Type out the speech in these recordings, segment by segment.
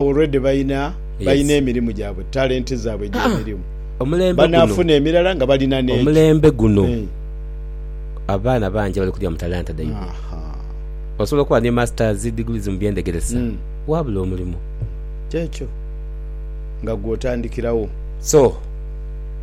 Already balina balina emirimu gyabwe talent zaabwe egy'emirimu. Banaafuna emirala nga balina n'egyo. Omulembe guno abaana bangi abali kulya mu talanta dhaibwe. Osobola okuba ni Masters, Degrees mu by'endhegeresa waabula omulimu. Ky'ekyo. Nga gw'otandikirawo. So.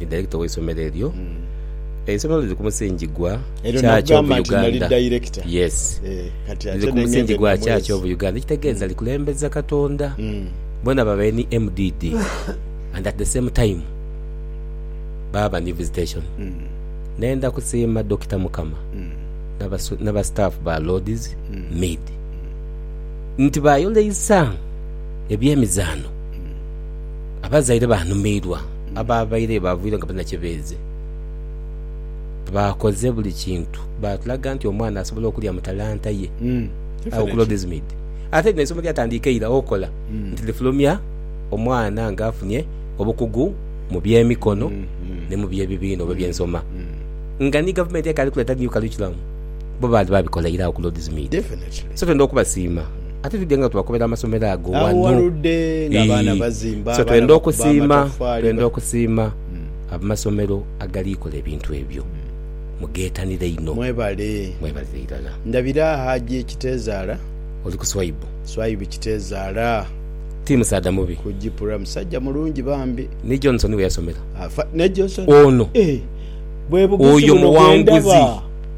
Ni Director w'eisomero eryo. Eisomero liri ku musingi gwa Church of Uganda. Yes. Liri ku musingi gwa Church of Uganda ekitegeeza likulembeza Katonda. Bona babaire ni MDD and at the same time baaba ni Visitation. Nenda kusiima Dokita Mukama n'aba staff ba Lord's Mead nti bayoleisa eby'emizaano. Abazaire baanumiirwa abaabaire baavuyire nga balina kye beeze. Baakoze buli kintu, baatulaga nti omwana asobola okulya mu talanta ye. Agho ku Lord's Mead. Ate lino eisomo lyatandiika eira okola nti lifulumya omwana ng'afunye obukugu mu by'emikono ni mu by'ebibiina oba eby'ensoma. Nga ni gavumenti ekaali kuleeta new curriculum, bo baali baabikola ira agho ku Lord's Mead. So twenda okubasiima. Ate twidhe nga tubakubera amasomero ago wano. Agho waludde nga abaana bazimba, so twendha okusiima, twendha okusiima amasomero agali kola ebintu ebyo. Mughetanire inho. Mwebale. Mwebalire irala. Ndabira Hajji Kitezaala. Oli ku Swaibu. Swaibu Kitezaala. Ti musaadha mubi. Ku Gipura. Musajja mulungi bambi. Ni Johnson weyasomera. Afa, ne Johnson. Ono. Eeh. Bwebugizi buno bwendaba. Oyo muwanguzi.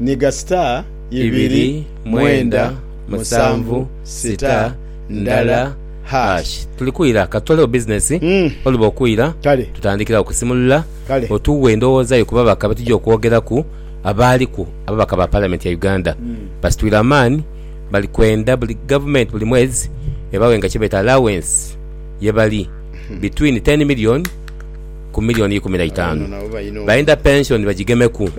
Ni ga star ibiri mwenda musanvu star ndala hash. Tuli kwira ka tutolewo business oluba okwira Kale. tutandikirawo kusimulula Kale. otuwe endowooza yo ku babaka betujja okwogeraku abaaliku ababaka ba parliament ya Uganda basitwire amaani bali kwenda buli government buli mwezi ebawe nga kyebeta allowance yebali between ten million ku milioni ikumi na itaanu, baidha pension bajigemeku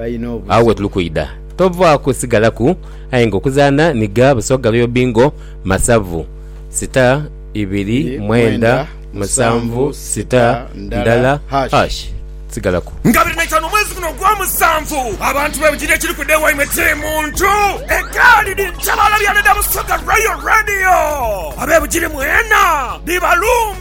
agho wetuli kwidha tovaaku sigalaku aye nga okuzaana ni gha Busoga Royal Bingo Masavu sitar ibiri mwenda musanvu sitar ndala hash sigalaku. Nga biri na itaanu omwezi guno ogwa musanvu abantu bebujidha ekiri kwidha ewaimwe kiri muntu egaali dhi ntabaala byaana dha Busoga Royal Radio abebujiri mwena dhibalumbye.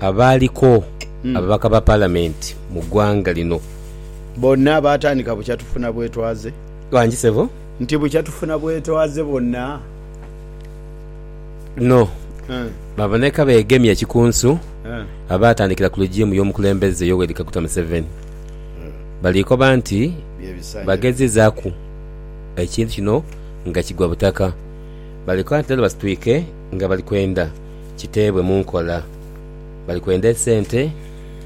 abaaliko ababaka ba Palamenti mu ggwanga lino. Bonna baatandika bukya tufuna bwetwaze. Wangi ssebo. Nti bukya tufuna bwetwaze bonna. No. Baaboneka beegemye ekikunsu abaatandikira ku legimu y'omukulembeze Yoweri Kaguta Museveni. Baliikoba nti bagezizaaku ekintu kino nga kigwa butaka. Baliikoba nti leero basitwike nga bali kwenda. kiteebwe mu nkola. Bali kwenda esente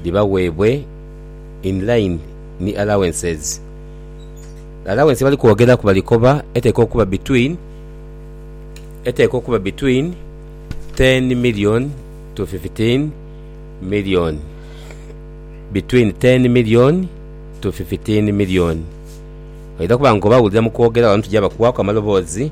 dhibaweebwe in line ni allowances. Allowance ye bali kwogeraku bali koba eteekwa okuba between eteekwa okuba between ten million to fifteen million, between ten million to fifteen million. Oidha kuba ng'obawulira mu kwogera wano tugya bakuwaaku amaloboozi.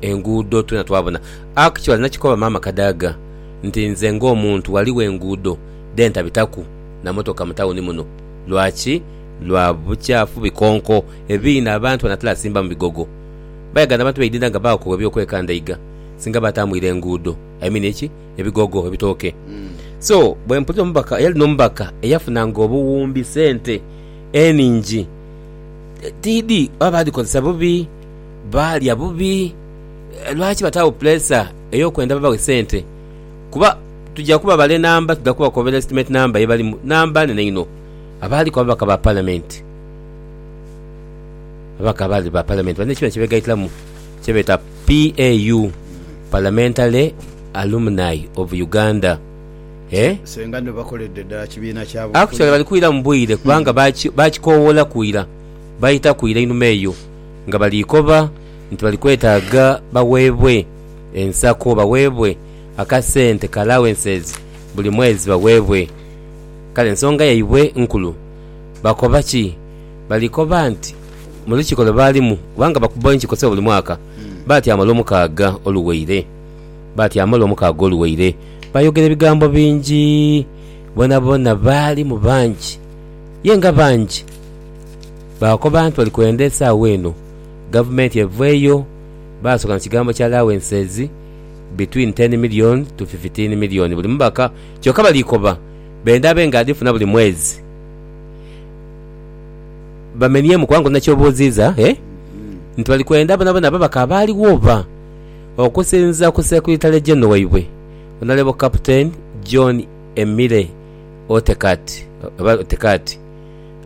enguudo twena twabona actually nakikoba maama kadaga nti nze nga omuntu waliwo enguudo dhentabitaku na motoka mu tawuni muno lwaki lwa bukyafu bikonko ebiina abantu banatela asimba mu bigogo bayagana abantu beidinda nga bakowa ebyokwekandaiga singa batamuila enguudo I mean eki ebigogo ebitooke so bwempulira omubaka eyali no mubaka eyafuna nga obuwumbi sente eningi tidhi oba badhikozesa bubi. baalya bubi. Lwaki bataagho puleesa ey'okwenda babawe sente? Kuba tuja kubabala enamba, tuja kubakobera estimate namba ye balimu, namba nene inho. Abaaliku ababaka ba Palamenti, ababaka abaali ba Palamenti balina ekibiina kye beegaitiramu kye beeta PAU, Parliamentary Alumni of Uganda. Eh? Senga nno bakoledde ddala kibiina kya bufuzi. Actually bali kwiramu bwire kubanga baaki- baakikowoolaku ira, baayitaku ira einhuma eyo. nga bali koba nti bali kwetaaga bagheebwe ensako, bagheebwe akasente ka allowances buli mwezi bagheebwe. Kale ensonga yaibwe nkulu. Bakoba ki? Bali koba nti mu lukiiko lwe baalimu, kubanga bakuba enkiiko ssebo buli mwaka, baatyama Olwomukaaga oluwaire, baatyama Olwomukaaga oluwaire baayogera ebigambo bingi, boonaboona baalimu bangi. Ye nga bangi! Baakoba nti bali kwenda esaagho eno gavumenti eveeyo. Baasoka na kigambo kya allowances between ten million to fifteen million buli mubaka kyoka bali koba benda abe nga adhifuna buli mwezi bamenyemu kubanga olina kyobuuziiza eh nti bali kwenda bonabona ababaka abaaligho oba? Okusinziira ku Secretary General waibwe Honourable Captain John Emile Otekati, Otekati,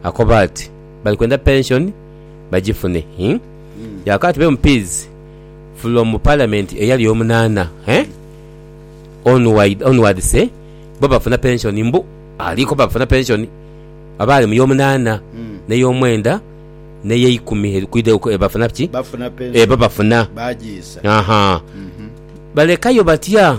Akoba ati, Bali kwenda pension bagifune, hii. Yaakoba ati, Be Mpiizi, from mu Parliament eyali omunaana, hee, onwide, onwards, hee, bo bafuna pension mbu ali koba bafuna pension. Abaali mu y'omunaana, n'ey'omwenda, n'ey'eikumi eri kwidha eku, bafuna ki? Bafuna pension. Eba bafuna. Baagiisa. Ahaa. Balekayo batya?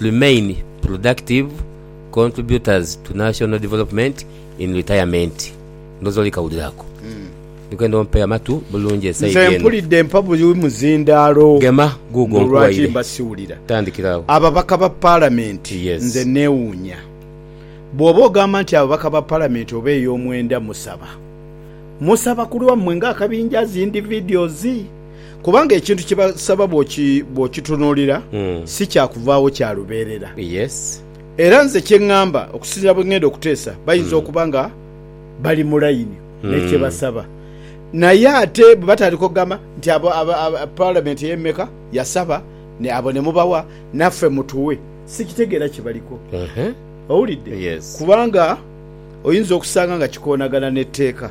Remain productive contributors to national development in retirement ndhooza oli kawuliro ako. Ndi kwenda ompe amatu bulungi e side eno. Nze mpulidde mpa buli muzindaalo. Gema guugwo nkuwaire. Mbu lwaki mba siwulira. Tandikira awo. Ababaka ba Palamenti nze neewuunya. Bw'oba ogamba nti ababaka ba Palamenti oba ey'omwenda musaba, musaba ku lwammwe ng'akabinja as individuals? Kubanga ekintu kye basaba bw'okitunuulira, si kya kuvaagho kya lubeerera. Era nze kye ŋŋamba, okusinziira bwe ŋŋenda okuteesa, bayinza okuba nga bali mu layini ne kye basaba. Naye ate bwe batandika okugamba nti abo Palamenti ey'emeka yasaba abo ne mubawa, naffe mutuwe, sikitegeera kye baliko. Owulidde? Kubanga oyinza okusanga nga kikoonagana n'etteeka.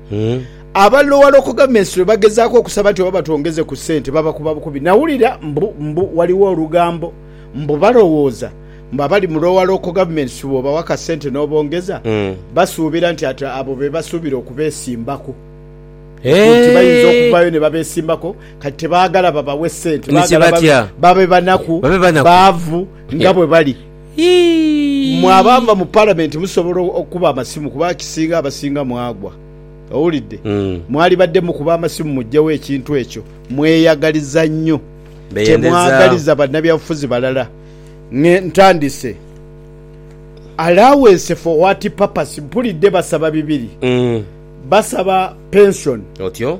Abalowalokoga mu Esiro bagezaaku okusaba nti oba batwongeze ku sente, babakuba bukubi. Nawulira mbu mbu waliwo olugambo mbu balowooza mbu abali mu Lowalooko Governments bw'obawa akasente n'obongeza, basuubira nti ati abo be basuubira okubeesimbaku. Nti bayinza okuvaayo ne babeesimbako. Kati tebaagala babawe sente, baagala babe banaku, baavu nga bwe bali. Mwe abaava mu Palamenti musobola okukuba amasimu kuba akisinga abasinga mwagwa. Owulidde? Mwalibadde mukuba amasimu muggyewo ekintu ekyo. Mweyagaliza nnyo. Temwagaliza bannabyabufuzi balala. Ng'e, ntandise. Allowance for what purpose? Mpulidde basaba bibiri. Basaba pensoni. Otyo.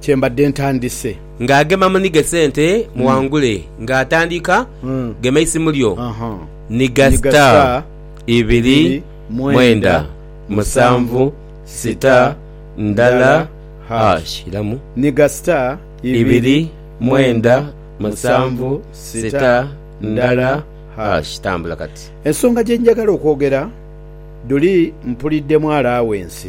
kye mbadde ntandise. Nga agema munhige sente muwangule nga atandika gema eisimu lyo nhiga star ibiri mwenda musanvu sita ndhala hash iramu nhiga star ibiri mwenda musanvu sita ndhala hash tambula kati. Ensonga gye njagala okwogera dhuli mpulidde mu alawensi.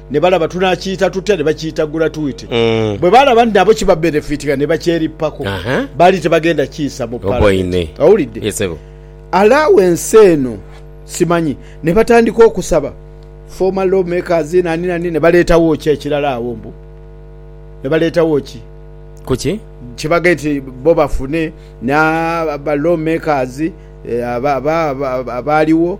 Ne balaba tunaakiita tutya, ne bakiitagula twite. Bwe baalaba nti nabo kibabenefiitinga ne bakyerippako, baali tebagenda kiisa mu Palamenti. Owulidde? Allow ensi eno, simanyi. Ne batandika okusaba former law makers nani nani, ne baleetawo ki ekirala agho mbu, ne baleetawo ki? Ku ki? Kye bagambye nti bo bafune, na, ba law makers aba, aba, aba, abaaliwo.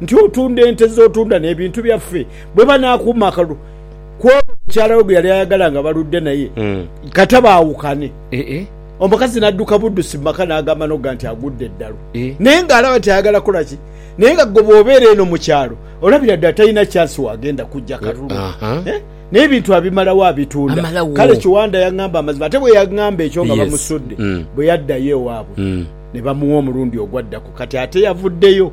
nti otunda ente ze otunda n'ebintu byaffe bwe banaakuuma akalulu kw'ono mukyala we gwe yali ayagala nga baludde naye kata baawukane. Omukazi n'adduka buddusi mu maka n'agamba n'oga nti agudde eddalu naye ng'alaba nti ayagala kukola ki naye nga ggwe bw'obeera eno mu kyalo olabira ddala talina kyansi w'agenda kuggya kalulu naye ebintu abimalawo abitunda. Kale Kiwanda yang'amba amazima ate bwe yang'amba ekyo nga bamusudde. Bwe yaddayo ewaabwe ne bamuwa omulundi ogwaddaku kati ate yavuddeyo.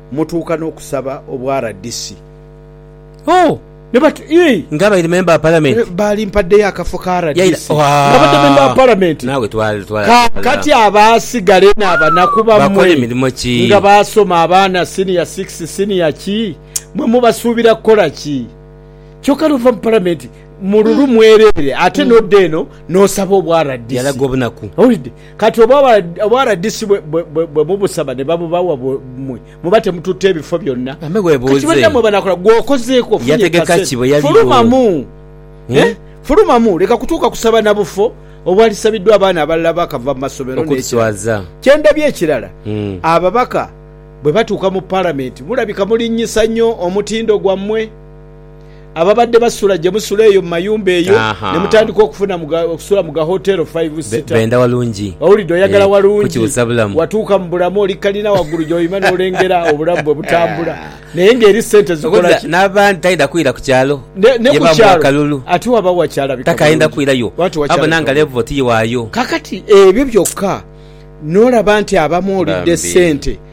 mutuuka n'okusaba obwa rdc. Oh! Ne bati, Yii! Nga abaire memba wa Palamenti. Baali mpaddeyo akafo ka rdc nga badde memba wa Palamenti. Kaakati abaasigale n'abanaku bammwe nga baasoma, abaana siniya six, siniya ki, mmwe mubasuubira kukola ki? Kyokka n'ova mu Palamenti mu lulu mwereere ate n'odda eno n'osaba obwa rdc. Owulidde? Kati oba obwaradisi bwe mubusaba ne babubawa mwe muba temututte bifo byonna. Kati bannammwe banakola gwe okozeeko ofunye kasente fulumamu eh fulumamu leka kutuuka kusaba na bufo obwalisabiddwa abaana abalala abaakava mu masomero n'ekirala. Kye ndabye ekirala ababaka bwe batuuka mu Palamenti mulabika mulinnyisa nnyo omutindo gwammwe. ababadde basula gye musula eyo mu mayumba eyo ne mutandika okufuna okusula mu ga hoteero five sita. Benda walungi. Owulidde oyagala walungi. Watuuka mu bulamu oli kalina waggulu gy'oyima n'olengera obulamu bwe butambula naye ng'eri ssente zikola ki? N'abandi tayenda kwira ku kyalo ye bamuwa kalulu takayenda kwirayo abona nga levo ti waayo. Kaakati ebyo byokka n'olaba nti abamu olidde ssente.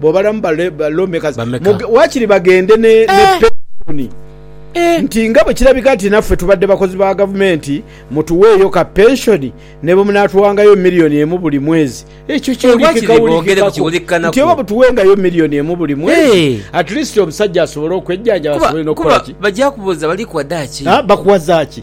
Bwo balamu ba lawmakers Bameka? muge- waakiri bagende ne, ne Eh. pensioni Eh, nti nga bwe kirabika nti naffe tubadde bakozi ba gavumenti mutuweeyo ka pensioni ne bwe munaatuwangayo miliyoni emu buli mwezi ekyo Eh, wakiri boogere ku kiwulikikako kiwulikikanaku. nti oba butuwengayo miliyoni emu buli mwezi Eh. at least omusajja asobole okwejjanjaba kuba, asobole n'okukola kuba ki bajja kubuuza bali kuwadaaki Ah, bakuwa zaaki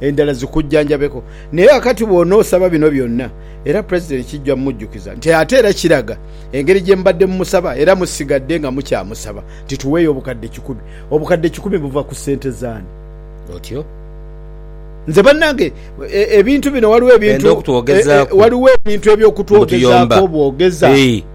endala zikujjanjabeku. Naye ghakati bw'onoosaba bino byonna era Pulezidenti kijja mujjukiza nti ate era kiraga engeri gye mubadde mumusaba era musigadde nga mukyamusaba nti tuweeyo obukadde kikumi. Obukadde kikumi buva ku ssente z'ani? Otyo? Nze bannange ebintu bino waliwo ebintu, waliwo ebintu eby'okutwogezaako obwogeza.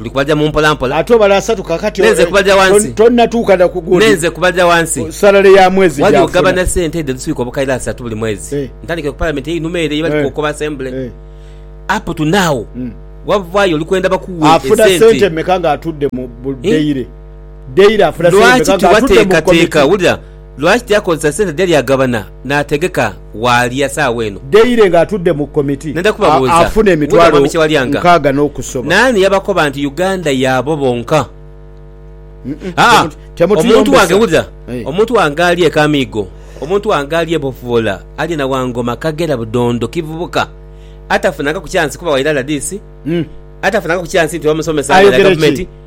Ndi kubaja mu mpola mpola. Ate obale asatu kakati. Nenze kubaja wansi. Tonatuuka na ku gundi. Nenze kubaja wansi. Salary ya mwezi gyafuna. Wali ogabana sente edho edhiswika obukaire asatu buli mwezi. Eh. Ntandikire ku parliament einhuma ere ye bali eh. kukoba assembly. Eh. Up to now. Mm. Wavayo oli kwenda bakuwe esente. Afuna sente meka nga atudde mu daily. Daily afuna sente meka nga atudde mu committee. Lwaki tiwateekateeka wulira. Lwaki tiyakozesa sente dheyali agabana n'ategeka waalya saagho eno? Daire ng'atudde mu komiti Nenda kubabuuza, afuna Wulira emitwalo mwami Kyewalyanga. nkaaga n'okusoba. Naani yabakoba nti Uganda yaabo bonka? Aa, Temut- omuntu wange, temutuyombesa. wulira, Eh. omuntu wange ali e Kamiigo, omuntu wange ali e Bofuboola, ali e Nawangoma, Kagera, Budondo, Kivubuka, atafunangaku kyansi kuba waira rdc, Mm. atafunangaku kyansi nti bamusomesa Ayogera aira ki? gavumenti,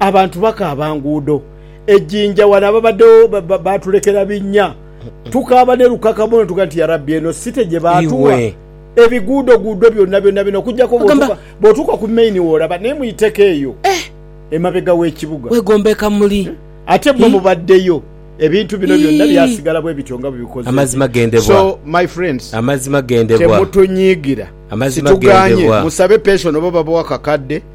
Abantu bakaaba nguudo. E Jinja wano ababaddewo baatulekera binnya. Tukaaba ne lukaka muno tuga nti, Yarabbi eno site gye baatuwa? Ebiguudoguudo byonna byonna bino okuggyako bw'otuuka ku main w'olaba naye mu iteka eyo emabega w'ekibuga. Weegomba e Kamuli. Ate mmwe mubaddeyo ebintu bino byonna byasigala bwe bityo nga bwe bikoze nti. So my friends temutunyiigira. Situgaanye musabe pension oba babawa kakadde.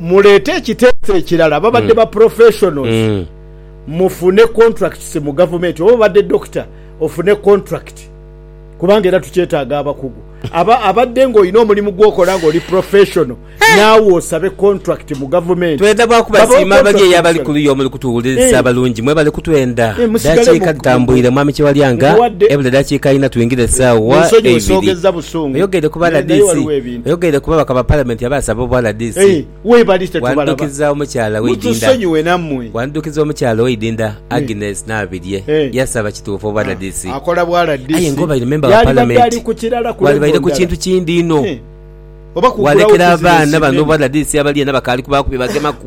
muleete ekiteeso ekirala babadde mm. ba professionals mm. mufune contracts mu gavumenti oba obadde doctor ofune contract kubanga era tukyetaaga abakugu aba abadde ng'olina omulimu gwokola ng'oli professional eh. naawe osabe contract mu gavumenti twenda bakubasiima abali eyo abali ku luyo omuli kutuwuliriza eh. abalungi mwe kutwenda eh, dakiika tutambwire mwami kyewalyanga ebula dakiika ina twingire esaawa eibiri oyogere kuba ladisi Oyogeire ku babaka ba Palamenti abaasaba obwa rdc. Wandukiza omukyala we Idinda Wandukiza omukyala owe Idinda Agnes Nabirye yasaba kituufu obwa rdc aye nga obaire memba wa Palamenti walibaire ku kintu kindi inho walekera abaana bano obwa rdc abali eno abakaali kubaaku bye bagemaku.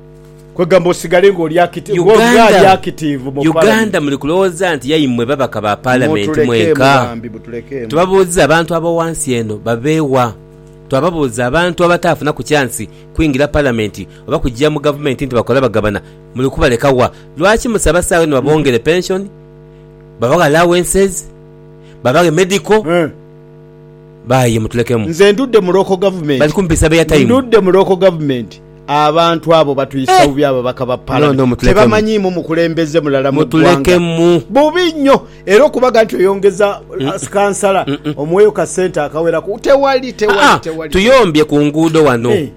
Kwegamba osigale nga oli akitiivu mu Palamenti. Uganda muli kulowooza nti yaimwe babaka ba Palamenti mwenka? Tubabuuza abantu ab'owansi eno babeewa? Twababuuza abantu abataafunaku kyansi kwingira Palamenti oba kuja mu Gavumenti nti bakola bagabana muli kubaleka wa? Lwaki musaba saawe ni babongere penshoni, babaghe allowances, babaghe medical? Baye mutulekemu. Nze ndudde mu local government. Bali kumpisa be airtime. Ndudde mu local government. Abantu abo batwisa bubi ababaka ba Palamenti, tebamanyiimu mukulembeze mulala mu ggwanga. Bubi nnyo era okubaga nti oyongeza kansala omuweeyo ka ssente akawerako, tewali, tewali, tewali. Tuyombye ku nguudo wano,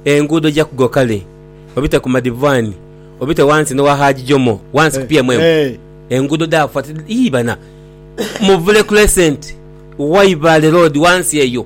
enguudo ja Kugo kale obite ku Madivani, obite wansi n'owa Haji Jomo, wansi ku PMM, enguudo dhaafa ti, yii bana! Muvule Crescent, Waibale Road wansi eyo.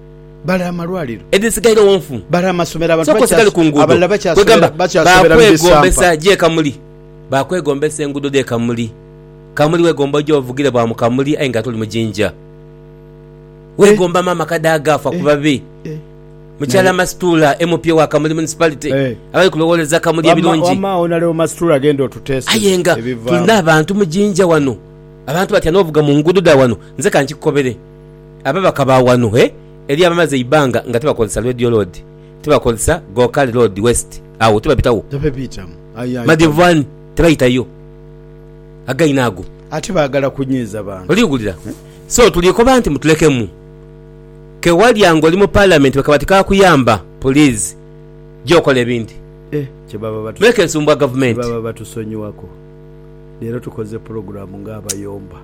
Bale amalwaliro. Edhisigairegho nfu. Bale amasomero abantu bakyasoberera bakyasoberera mu bisampa. Baakwegombesa gye Kamuli. Baakwegombesa enguudo dhe Kamuli. Kamuli weegomba oje ovugire bwa mu Kamuli aye ng'ate oli mu Jinja. Weegomba maama kade agaafa ku babe. Mukyala Masituula MP wa Kamuli Municipality abali kulowooleza Kamuli ebirungi. Aye nga tulina abantu mu Jinja wano. Abantu batya n'ovuga mu nguudo dha wano. Nze ka nkikukobere. Ababaka ba wano e eriyo abamaze eibbanga nga tibakozesa Radio Road, tibakozesa Gokali Road West, agho tibabitawo. Madhivani tibaitayo againe ago. Ate baagala kunyiiza bantu. Oli wulira? So tuli koba nti mutulekemu. Ke walya nga oli mu Palamenti bakaba tikakuyamba, puliizi ja okola ebindi. Muleke nsumbwa Gavumenti.